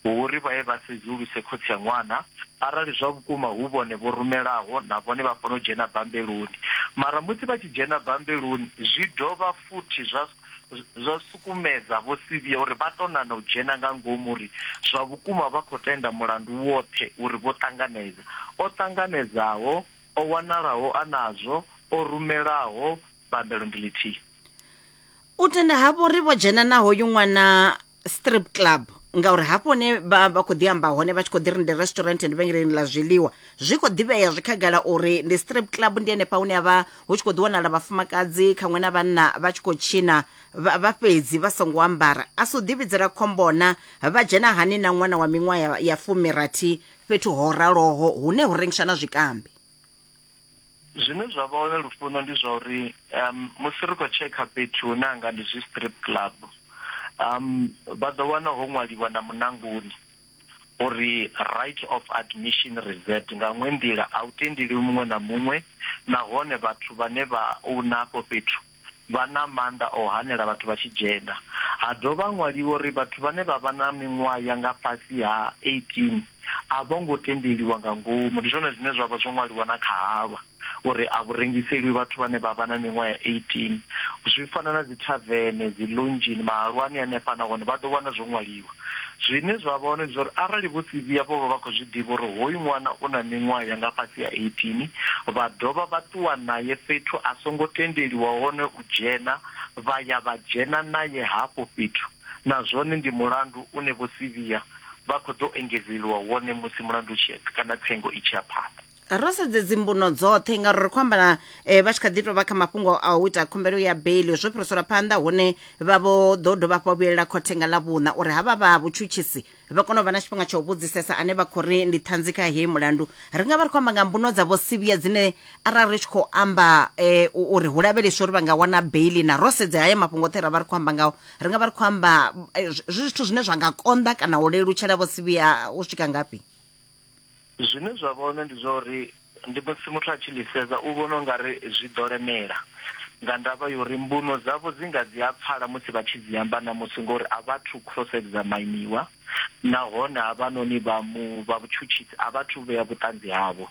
hu uri vha ye vha sedzuluse khotsi ya ṅwana arali zwa vhukuma hu vhone vho rumelaho na vhone vha fanela u dzhena bambeloni. Mara musi vha tshi dzhena bambeloni zwi dovha futhi zwa zwa sukumedza Vho Sivhiya uri vha tou nana u dzhena nga ngomu uri zwa vhukuma vha khou tenda mulandu woṱhe uri vho ṱanganedza, o ṱanganedzaho, o wanalaho a nazwo, o rumelaho bambelo ndi ḽithihi. u tenda havho uri vho dzhena na hoyu ṅwana strip club ngauri hafho hune vha vha khou ḓi amba hone vha tshi khou ḓi ri ndi restaurant ndi vhengeleni ḽa zwiḽiwa zwi khou ḓivhea zwi khagala uri ndi strip club ndi henefha hune havha hu tshi khou ḓi wanala vhafumakadzi khaṅwe na vhanna vha tshi khou tshina vha vha fhedzi vha songo ambara a si u ḓivhidzela khombona vha dzhena hani na ṅwana wa miṅwaha ya- ya fumirathi fhethu ho raloho hune hu rengiswa na zwikambi Zwine zwa vha hone Lufuno ndi zwa uri musi ri khou tshekha fhethu hune ha nga ndi zwi strip club vha ḓo wana ho ṅwaliwa na muṋangoni uri right of admission reserved nga iṅwe nḓila a u tendeliwi muṅwe na muṅwe nahone vhathu vhane vha own afho fhethu vha na maanḓa o hanela vhathu vha Tshigenda. Ha dovha ha ṅwaliwa uri vhathu vhane vha vha na miṅwaha ya nga fhasi ha 18 a vho ngo tendeliwa nga ngomu. Ndi zwone zwine zwa vha zwo ṅwaliwa na kha halwa uri a vhu rengiseliwi vhathu vhane vha vha na miṅwaha ya 18. Zwi fana na dzithavene, dzilunzhini, mahalwani hanefha na hone vha ḓo wana zwo ṅwaliwa. Zwine zwa vha hone ndi zwa uri arali Vho Sivhiya vho vha vha khou zwi ḓivha uri hoyu ṅwana u na miṅwaha ya nga fhasi ha 18, vha dovha vha ṱuwa nae fhethu a songo tendeliwa hone u dzhena vha ya vha dzhena nae hafho fhethu, na zwone ndi mulandu une Vho Sivhiya vha khou ḓo engedzeliwa wone musi mulandu u tshi ya kana tsengo i tshi ya phanḓa. ro sedze dzimbuno dzoṱhe ngauri ri khou amba na eh, vha tshi kha ḓi tou vha kha mafhungo a u ita khumbelo ya beli zwo fhiriselwa phanḓa hune vha vho ḓo dovha hafhu vha vhuyelela khothe nga ḽa vhuṋa uri havha vha vhutshutshisi vha kone u vha na tshifhinga tsha u vhudzisesa ane vha khou ri ndi ṱhanzi kha heyi mulandu ri nga vha ri khou amba nga mbuno dza vho sivhiya dzine arali ri tshi khou amba eh, u- uri hu lavheleswe uri vha nga wana beli na ro sedze haya mafhungo oṱhe ra vha ri khou amba ngao ri nga vha ri khou amba eh, zwi zwi zwithu zwine zwa nga konḓa kana u lelutshela vho sivhiya u swika ngafhi zwine zwa vha hone ndi zwa uri ndi musi muthu a tshi ḽi sedza u vhona ungari zwi ḓo lemela nga ndavha ya uri mbuno dzavho dzi nga dzi a pfala musi vha tshi dzi amba na musi ngori a vha thu cross examiniwa nahone ha vha noni vha mu vha vhutshutshisi a vha thu vhea vhuṱanzi havho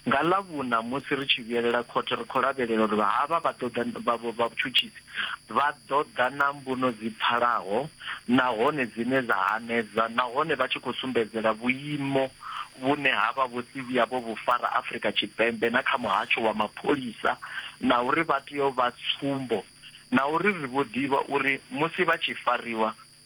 nga ḽa vhuna musi ri tshi vhuyelela khothe ri kho lavhelela uri vha havha vha ḓo ḓa vha vhutshutshisi Vha ḓo ḓa na mbuno dzi pfalaho nahone dzine dza hanedza nahone vha tshi khou sumbedzela vhuimo vhune ha vha vho si vhuya vho vhu fara Afrika Tshipembe na kha muhasho wa mapholisa na uri vha tea u vha tsumbo na uri ri vho ḓivha uri musi vha tshi fariwa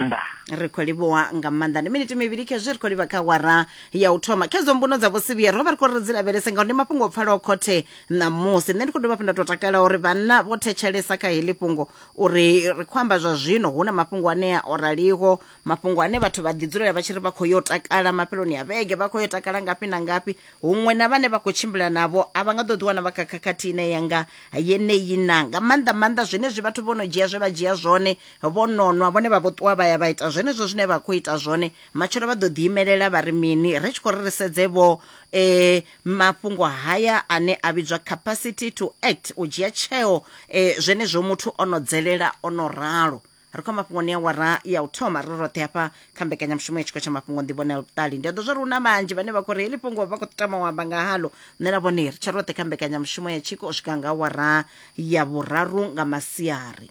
nda ri khou livhuwa nga maanḓa ndi miniti mivhili khezwi ri khou livha kha wara ya u thoma khedzo mbuno dza vhosivhiya ro vha ri khou ri dzi lavhelese ngauri ndi mafhungo o pfalaho khothe ṋamusi nṋe ndi khou dovha fhi nda tou takala uri vhanna vho thetshelesa kha heḽi fhungo uri ri khou amba zwa zwino hu na mafhungo anea o raliho mafhungo ane vhathu vha ḓidzulela vha tshi ri vha khou yo takala mafheloni a vhege vha khou yo takala ngafhi na ngafhi huṅwe na vhane vha khou tshimbila navho a vha nga ḓo ḓiwana vha kha khakhathi ine ya nga yeneyi na nga maanḓa maanḓa zwenezwi vhathu vho no dzhia zwe vha dzhia zwone vho nonwa vhone vha vho ṱuwa vha ya vha ita zwenezwo zwine vha khou ita zwone matshelo vha ḓo ḓiimelela vha ri mini ri tshi khou ri ri sedze vho e mafhungo haya ane a vhidzwa capacity to act u dzhia tsheo e zwenezwo muthu o no dzelela o no ralo ri khou mafhungoni ya wara ya u thoma ri roṱhe hafha kha mbekanyamushumo ya tshiko tsha mafhungo nḓivhonela vhuṱali ndi a ḓo zwa ri hu na vhanzhi vhane vha khou ri heḽi fhungo vha khou tama u amba nga halo nṋe na vhone ri tsha roṱhe kha mbekanyamushumo ya tshiko u swika nga wara ya vhuraru nga masiari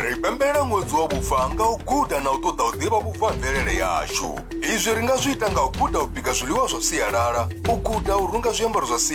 ri pembelela ṅwedzi wa vhufa nga u guda na u ṱoḓa u ḓivha vhubvo ha mvelele yashu izwi ri nga zwi ita nga u guda u bika zwiḽiwa zwa sialala u guda u runga zwiambaro zwa sialala